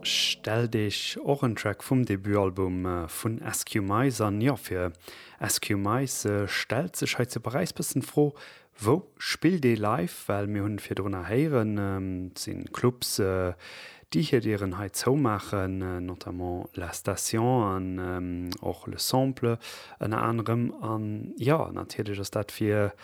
Stellt Eech och en Track vum Debutalbum vun SQMice an? Jo, fir SQMice stellt sech hei zu Paräis bëssen d'Fro, Wou spillt ee live? Well mir hunn virdrunner héieren, et si Clubs, déi hir Dieren hei zoumaachen, notamment La Station an och Le Sample ënner anerem. An jo, natierlech ass dat fir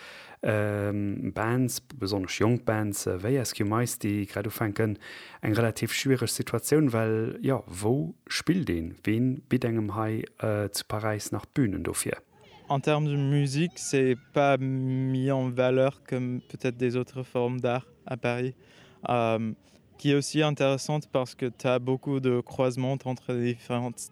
Bands, besonnesch jonk Bands wéi Askew Mice, déi grad ufänken, eng relativ schwiereg Situatioun, well, jo, wou spillt een? Wee bitt engem hei zu Paräis nach Bünen dofir? En termes de musique, c'est pas mis en valeur comme peut-être des autres formes d'art à Paris, qui est aussi intéressante parce que tu as beaucoup de croisements entre les différentes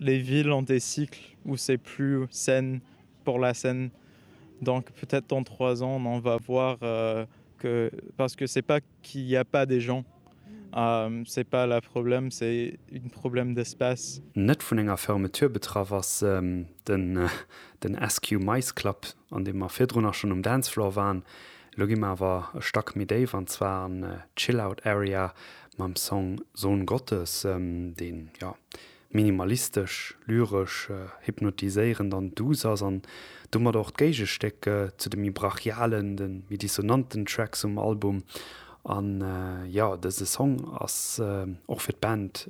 les villes ont des cycles où c'est plus sain pour la scène donc peut être dans trois ans on va voir que parce que c'est pas qu'il n'y a pas des gens c'est pas la problème c'est une problème d'espace. Net vun enger Fermeture betraff ass den SQ Mice Club, an deem mer virdrun och schonn um Dancefloor waren. Elo gi mer awer e Stack méi déif, an zwar an d'Chill-Out Area, mam Song Sohn Gottes, deen jo minimalistesch, lyresch, hypnotiséierend an duuss ass an domat och d'Géigestéck zu de méi brachialen, de méi dissonanten Tracks um Album. An jo, dëse Song ass och fir d'Band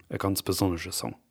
e ganz besonnege Song.